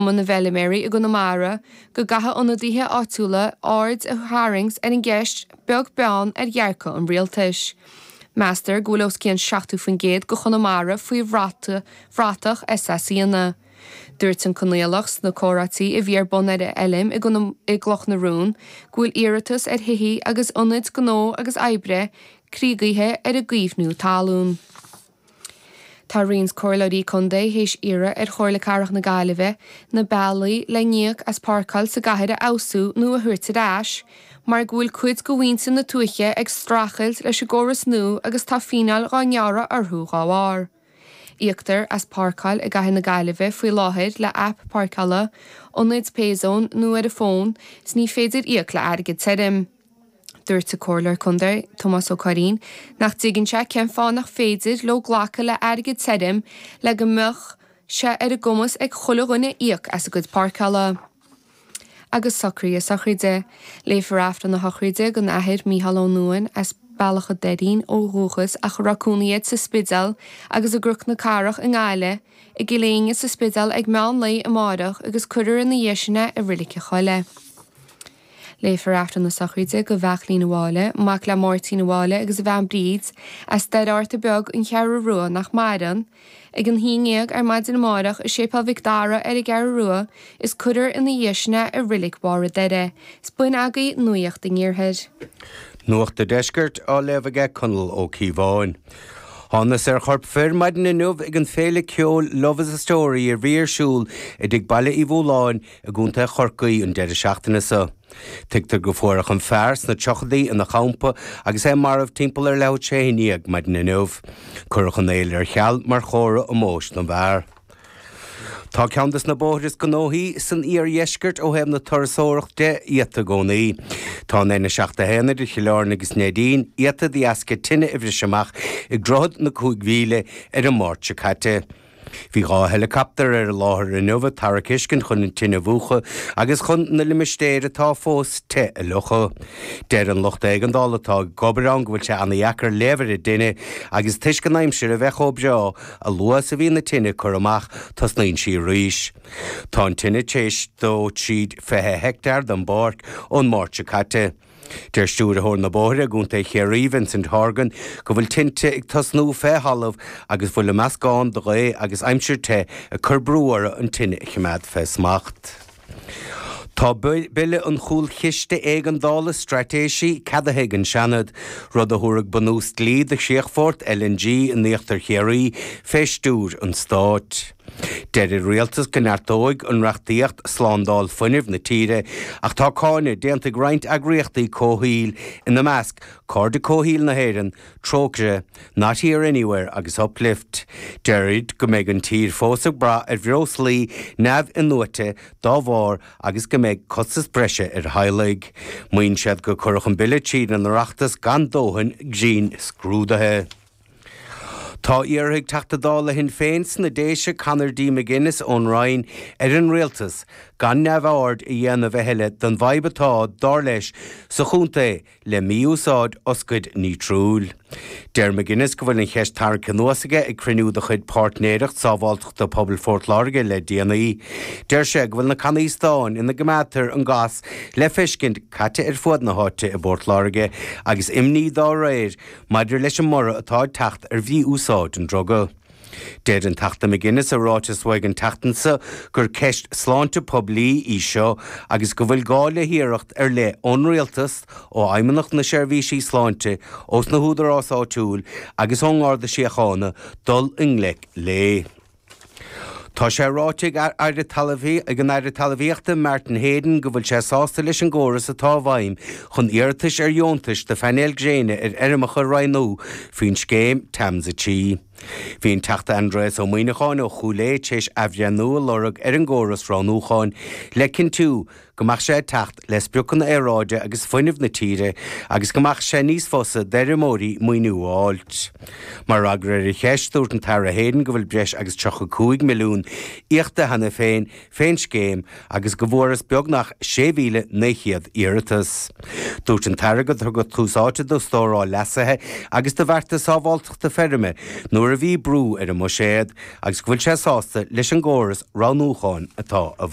Cumann na bhFeiliméaraí i gConamara go gcaithfidh ionadaithe áitiúla aird a tharraingt ar an gceist, beag beann ar dhearcadh an rialtais. Meastar go bhfuil os cionn 70% de Chonamara faoi bhratach SACanna. Dúirt an Conaolach sna comhráití a bhí ar bun ar a fheilm i gCloch na Rón go bhfuil iarratas ar thithí agus ionaid gnó agus oibre criogaithe ar an gcaomhnú talún. Tá roinnt comhairleoirí contae théis iarraidh ar Chomhairle Cathrach na Gaillimhe na bealaí le n-íoc as páirceáil sa gcathair a fheabhsú nó a thabhairt ar ais mar go bhfuil cuid de mhuintir na tuaithe ag streachailt leis an gcóras nua agus tá fíneáil dhá ngearradh orthu dhá bharr. Íoctar as páirceáil i gCathair na Gaillimhe faoi láthair le aip páirceála, ionaid Payzone nó ar an bhfón, is ní féidir íoc le airgead tirim. Dúirt an Comhairleoir Contae, Tomás Ó Curraoin, nach dtuigeann sé cén fáth nach féidir leo glacadh le airgead tirim le go mbeadh sé ar a gcumas ag chuile dhuine íoc as a gcuid páirceála agus socruithe sochraide. Léifear Aifreann na Sochraide don Athair Micheál Ó Nuáin as Bealach a' Doirín ó dhúchas ach a raibh cónaí air sa Spidéal agus i gCnoc na Cathrach i nGaillimh i gCill Éinne sa Spidéal ag meán lae amáireach agus cuirfear ina dhiaidh sin é i Reilig a' Choilligh. Léifear Aifreann na Sochraide do Bheachlín Mháille, mac le Máirtín Mháille agus a bhean Bríd, as Doire Fhatharta Beag, An Cheathrú Rua, nach maireann, ag an haon ndéag ar maidin amáireach i Séipéal Mhic Dara ar an gCeathrú Rua is cuirfear ina dhiaidh sin é i Reilig Bharr an Doire. 'S b'in agaibh nuaíocht an iarthair. Nuacht an Deiscirt á léamh aige Conall Ó Cíobháin. Thánathas ar chorp fir maidin inniu ag an féile ceoil Love is a Story a bhí ar siúl i dtigh Baile Uí Mhúláin, i gContae Chorcaí an deireadh seachtaine seo. Tuigtear go bhfuaireadh an fear sna tríochaidí ina champa agus é marbh timpeall ar leathuair tar éis a haon déag maidin inniu. Cuireadh an fhéile ar cheal mar chomhartha omóis don bhfear. Tá ceann de na bóithre is gnóthaí san iardheisceart ó thaobh na turasóireacht de iata i gcónaí. Tá an N71 idir Chill Airne agus Neidín iata de dheasca tine a bhris amach ag Droichead na Cúig Mhíle ar an Máirt seo caite. Bhí dhá heileacaptar ar an láthair inniu ag tarrac uisce chun an tine a mhúchadh agus chun na limistéir atá fós te a fhliuchadh. Deir an lucht éigeandála atá ag obair ann go bhfuil sé ana-dheacair léamh ar an dtine agus toisc an aimsir a bheith chomh breá, a luaithe is a bhíonn an tine curtha amach, tosnaíonn sí arís. Tá an tine tar éis dó tríd 20 heicteár den bpáirc ón Máirt seo caite. Deir Stiúrthóir na Bóithre i gContae Chiarraí, Vincent Horgan, go bhfuil tinte ag tosnú fé thalamh agus go bhfuil an meascán de ghaoth agus aimsir te ag cur brú orthu an tine a choimeád fé smacht. Tá Bille an Chúlchiste Éigeandála, Straitéisí, ceadaithe ag an Seanad, rud a thabharfaidh bunús dlí do Chríochfort LNG in Íochtar Chiarraí fé stiúir an Stáit. Deir an rialtas go neartóidh an reachtaíocht slándáil fuinnimh na tíre ach tá cáineadh déanta ag roinnt eagraíochtaí comhshaoil, ina measc, Cairde Comhshaoil na hÉireann, Trócaire, Not Here Not Anywhere agus Uplift. Deir siad go mbeidh an tír fós ag brath ar bhreoslaí neamh-in-nuaite dá bharr agus go mbeidh costas breise ar theaghlaigh. Maíonn siad go gcuireadh an bille tríd an Oireachtas gan dóthain dianscrúdaithe. Tá iarrtha ag Teachta Dála Shinn Féin sna Déise Conor D. McGuinness ón Roinn ar an Rialtas gan neamhaird a dhéanamh a thuilleadh den bhfadhb atá, dar leis, sa chontae le mí-úsáid oscaid nítriúil. Deir McGuinness go bhfuil an cheist tarraingthe anuas aige ag cruinniú de chuid Pháirtnéireacht Sábháilteachta Pobail Phort Láirge le déanaí. Deir sé go bhfuil na cannaí stáin ina gcoimeádtar an gás le feiscint caite ar fud na háite i bPort Láirge agus imní dá réir maidir leis an mborradh atá ag teacht ar mhí-úsáid an druga. Deir an Teachta McGuinness i ráiteas uaidh an tseachtain seo gur ceist sláinte poiblí í seo agus go bhfuil gá le hiarracht ar leith ón Rialtas, ó Fheidhmeannacht na Seirbhísí Sláinte, ós na húdaráis áitiúla agus ón nGarda Síochána dul i ngleic léi. Tá sé ráite ag Aire Talmhaíochta ag an Aire Talmhaíochta Martin Heydon go bhfuil sé sásta leis an gcóras atá i bhfeidhm chun iarratais ar dheontais do phainéil gréine ar fheirmeacha a roghnú faoin scéim TAMS a trí. Bhí an Teachta Aindrias Ó Muimhneacháin ó Chúil Aodha tar éis athbhreithniú a lorg ar an gcóras roghnúcháin le cinntiú go mbeadh sé ag teacht le spriocanna aeráide agus fuinnimh na tíre agus go mbeadh sé níos fusa d'fheirmeoirí maoiniú a fháilt. Mar fhreagra ar a cheist, dúirt an tAire Heydon go bhfuil breis agus 35 milliún íocta cheana féin fén scéim agus go bhfuarthas beagnach 6,900 iarratas. Dúirt an tAire gur tugadh tús áite do stóráil leasaithe agus do bhearta sábháilteachta feirme nuair a bhí brú ar an mbuiséad agus go bhfuil sé sásta leis an gcóras roghnúcháin atá i